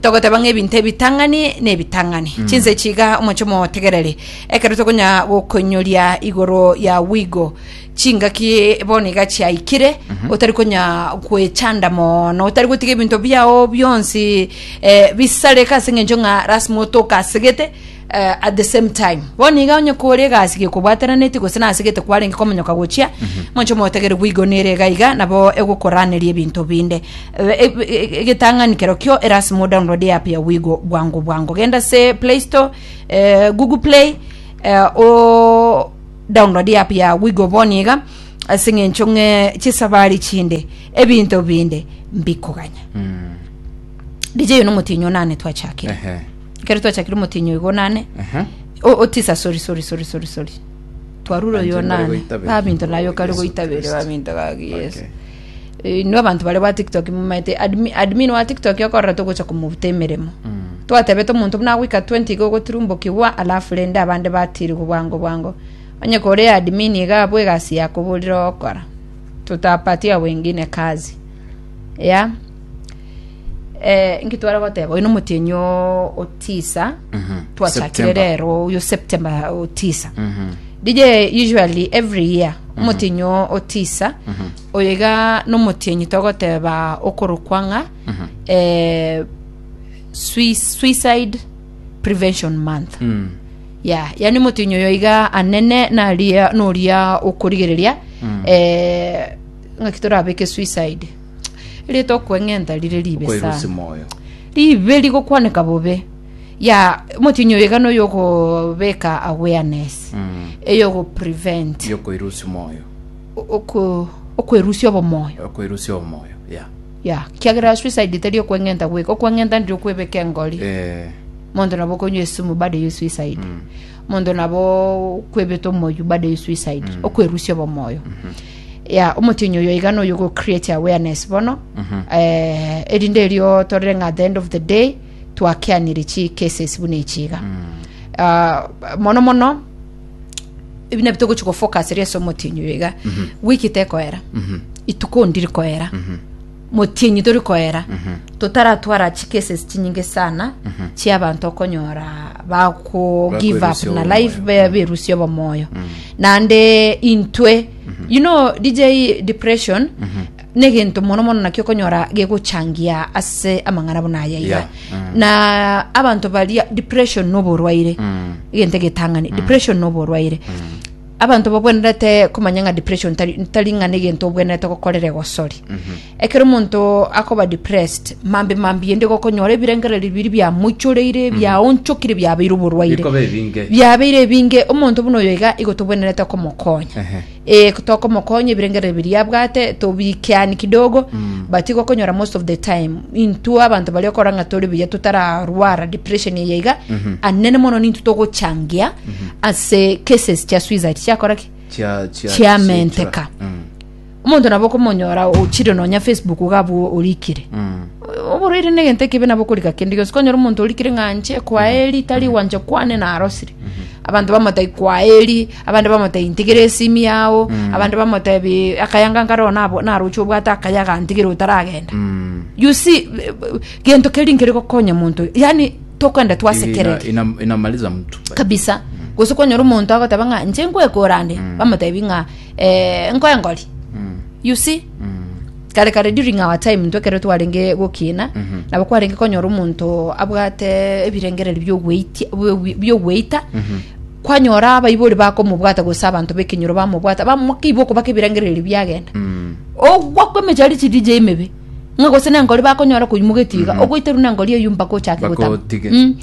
Togoteba ng'a ebinto ebitang'ani nebitang'ani. Chinse chiga omonche omotegereri ekero tokonya gokoinyoria igoro ya wigo chingaki bono iga chiaikire otari konya gwechanda mono otari gotiga ebinto biao bionsi eh, bisareka ase eng'encho ng'a lasima otoke asegete eh, at the same time bono iga onye kore egasi gekobwateraneti gose nase gete kwarenge komonyoka gochia monche motegere gwigonere iga iga nabo egokoraneria ebinto binde Eh, eh, eh, egetang'ani kero kio erasimo download app ya wigo bwango bwango genda se play store eh, google play eh, o download app ya wigo boni iga ase ng'encho ng'e chisabari chinde ebinto binde mbikoganya dj uno motinyo nane twachakire Ehe. ekero twachakire omotienyi oigo nane Aha. o, o tisa sorry sorry sorry sorry sorry twarure Abanto oyo nibare nane goita bere. babinto nayo kare Yesu goita bere Kristo. babinto gaki yesu Okay. Eh, inwe abanto bare ba tiktok mumaete admin, admin wa tiktok okorora togocha komubuta emeremo Mm. twatebete omonto buna agoika 20 iga ogoturumbokigwa alafu rende abande batirigwe bwango bwango onye kore admin iga abwo egasi yakoborire okora tutapatia wengine kazi ya Eh, inki twara goteba oyo nomotienyi o- otisa twachakire September. rero oyo september otisa dj usually every year omotienyi o- otisa oyo iga nomotienyi togoteba okorokwa ng'a eh, sui- suicide prevention month Mm. ya yani motienyi oyo iga anene naria noria okorigereria eh, ng'aki torabeke suicide Erieta okweng'enta rire ribe Okoirusia sana. moyo. Ribe rigokwaneka bobe. Ya motinyi oyo iga noyo ogobeka awareness. Mm. Eyo ogoprevent. Yokoirusia moyo. Oko okwerusia obomoyo. Okoirusia omoyo. Yeah. Ya, kiagera suicide tari okweng'enta gweka. Okweng'enta ndiri okwebeka engori. Eh. Monto nabo okonywa esumu bado eyo suicide. monto nabo kwebeta omoyio bado you suicide mm. okwerusia obomoyo mm -hmm. ya omotinyi oyo iga noyo go create awareness bono mm -hmm. eh, erinde erio torere ng'a at the end of the day twakeanire chi cases buna echiga mm. uh, mono mono ebina bitogochi go focus ria somotinyi oyo iga mm -hmm. wiki tekoera mm -hmm. ituko ndiri koera mm -hmm motienyi tori koera totaratwara chikeses chinyinge sana chia abanto okonyora bako give up Bakwerusio na life obomoyo. be- berusia obomoyo naende intwe you know dj depression negento mono mono nakio okonyora gegochangia ase amang'ana buna aya iga Yeah. Mm. na abanto baria depression noborwaire egento egetang'ani depression noborwaire Abanto babwenerete komanya ng'a depression tari tari ng'a negento obwenerete gokorera egosori. Ekero omonto akoba depressed, mambe mambia inde gokonyora ebirengererio biri biamoichoreire, biaonchokire, biabeire oborwaire. Bikoba ebinge. biabeire ebinge omonto buna oyo iga igo tobwenerete komokonya Ehe. Eh, tokomokonya ebirengererio biria abwate tobikiani kidogo but igo okonyora most of the time intwe abanto baria okora ng'a tore buya totararwara depression eye iga anene mono nintwe togochangia ase cases chia suicide chiakora ki Chia- chia- chiamenteka chia- Mm, omonto nabo okomonyora ochire nonya facebook iga abwo orikire mm. oboreire negento ekibe nabo okorika kende gionsi konyora omonto orikire ng'anche kwaeri tari gwancha kwane narosire abanto bamotai kwaeri abande bamotai ntigire esimi yao abande bamotebi akayanga nkareo nabo- naroche obwate akayaga ntigire otaragenda Mm. you see eh, eh, gento keri nkeri gokonya monto yani tokoenda twasekereri ina, ina, inamaliza mtu kabisa mm. gose kwanyora omonto agoteba ng'a nche nkwekora ande mm. bamotebi ng'a eh, nkoe ngori mm. you see mm kare kare during our time ntwe kero twarenge gokina mm -hmm. nabo kwarenge konyora omonto abwate ebirengereri biogweita mm -hmm. kwanyora abaibori bakomobwata gose abanto bekenyoro bamobwata bamokiibwa okobaka ebirengereri biagenda mm. ogwa kwemechari chiri jaimebe ng'a gose nengori bakonyora koimogetie iga ogoiterwa nengori eyio mpaka ochake Mpaka gotama otige. Mm.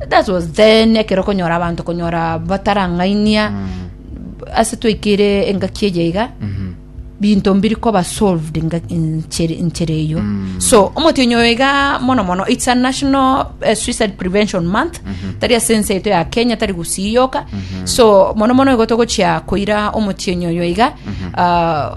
Eh. that was then ekero okonyora abanto konyora batarang'ainia ase twaikire engaki eye iga Mhm. binto mbiri koba solved nga- inchere inchere eyo so omotienyi oyo iga mono mono its a national eh, suicide prevention month tari ase ense yaito ya kenya tari gusii yoka so mono mono igo togochia koira omotienyi oyo iga ah,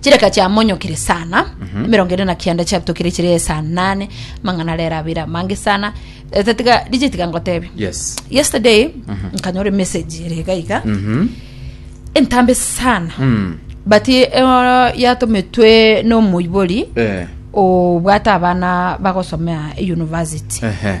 chireka chiamonyokire sana emerongo ere na kianda chiabitokire chire esa nane mang'ana arera abere amange sana Eh, tatiga dije tiga ngotebe yes yesterday nkanyora message ere iga iga Mhm. entambe sana Mm. but eh, yatometwe n'omoibori Eh. obwate abana bagosomea university Ehe.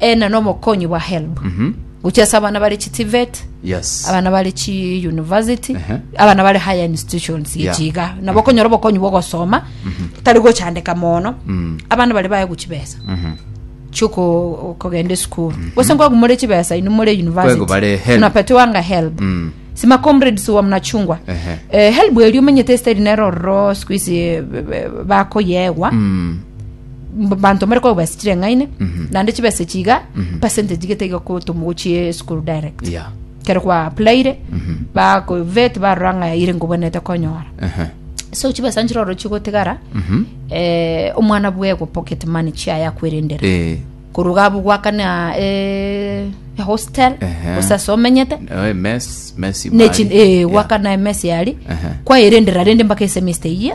eh, na nobokonyi bwa help gochia ase abana bare chi tivet yes abana bare chi university Ehe. abana bare higher institutions Yeah. gechiga nabo okonyora obokonyi bwa ogosoma tari gochandeka mono abana bare baye gochi besa chioko kogenda esukuru gose nkwagu more chibesa inu more Kwego university bare help. tunapatiwanga help Mm. sima comrades wa mnachungwa Ehe. eh, help erio omenyete esitari nero ororo siku isi eh, b- b- bakoyegwa Mm. mbanto mbare kogwa besa chireng'aine naende chibesa echi iga percentage gete iga koto mogochie esukuru direct Yeah. kero kwa appliere bako vet barora ng'a ire ngobwenete konyora Ehe. so chibesa nchire oro chigotigara eh, omwana bwego pocket money chiaye akwerendera Eh, koruga abu gwakana eh, hostel Ehe. gose ase omenyete eh, mess- mess nechi ibari. eh, Yeah. gwakana emesi yari Ehe. kwaerendera rende mpaka esemester iye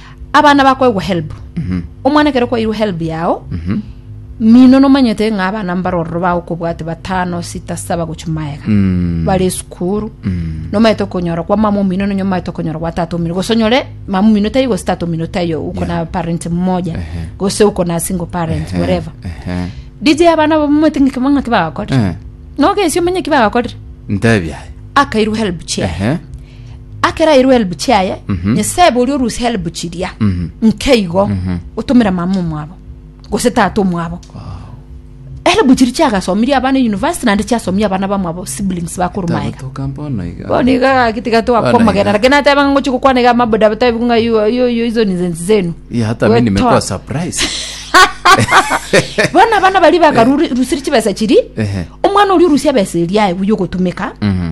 abana bakoegwa help omwana ekero kwairwe help yao mino nomanyete ng'a abana mbarororo bagokobwate batano sita saba gochia maega Mm. bare esukuru nomaete okonyora kwa mama omino nonye omaete okonyora kwa tata omino gose onyore mama omino taiyo gose tata omino taiyo uko na parent mmoja gose uko na single parent whatever Ehe. dj abana abo momwete ng'iki ng'aki bagakorire Eh. nogesia omanye ki bagakorire Ntebi aye. akairwe help chair Ehe. akerairwe elbu chiaye Mhm. nyasaye bori orusi elbu chiria Mhm. nkeigo Mhm. otomera mama omwabo gose tata omwabo elbu chiri chiagasomirie abana university naende chiasomia abana bamwabo siblings bakuru maega Tagotoka mbono iga. bono iga gagiti Bana gatwakomogera iga. lakini ateba ng'a ngochi gokwana iga amabuda batabi ng'a yo yo yo izo nizensi zenu Ya, hata mimi nimekuwa Wetoa. surprise. bono abana bari bakarusiri chibesa chiri Ehe. omwana oria orusia ebesa eria aye buya ogotumeka Mhm.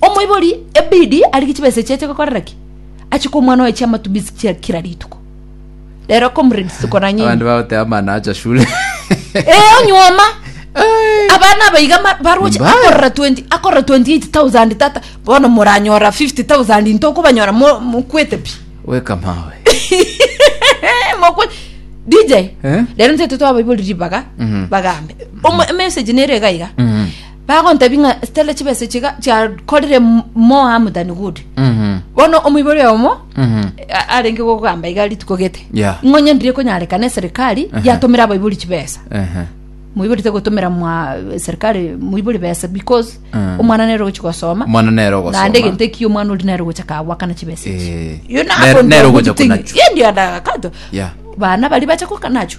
omoibori ebidi arige chibesa echi ache gokorera ki ache kwa omwana oye chiamatumizi chia kira rituko rero comrades tokoranye ebi. abandu bagoteba mana acha shule Eh, onyuoma abana abaiga ma- baroche Mbaya. akorora 20 akorora 28000 tata bono moranyora 50000 into okobanyora mo- mokwete pi weka mawe Eh, mokwe dj Eh? rero ntete twabaibori ribaga Mhm. bagambe Omo- message nere gaiga Mhm. Bagontebia ng'a Stella chibesa echi iga chiakorire moa motani good. Mhm. Bono omoibori oyomo Mhm. a- arenge gogamba iga rituko gete. Yeah. Ng'onye ndiri ekonyarekana eserikali yatomera abaibori chibesa. Ehe. Moibori tegotomera mwa serikali moibori besa because Mm. omwana nere ogochi gosoma. Omwana nere ogosoma. Naende egento ekio omwana ori nere ogocha kagwakana chibesa echi. Eh. You know, Nere- ako nere ndio ogocha good thing. konacho. Ye ndio ndagakato. Yeah. Bana bari bacha kokanacho.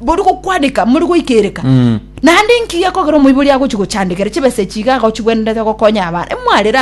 Bori gokwaneka mori goikereka. Naende inki gekogera omoibori agochi gochandekera chibesa echi iga agochi gwenderete gokonya abana? Imwarera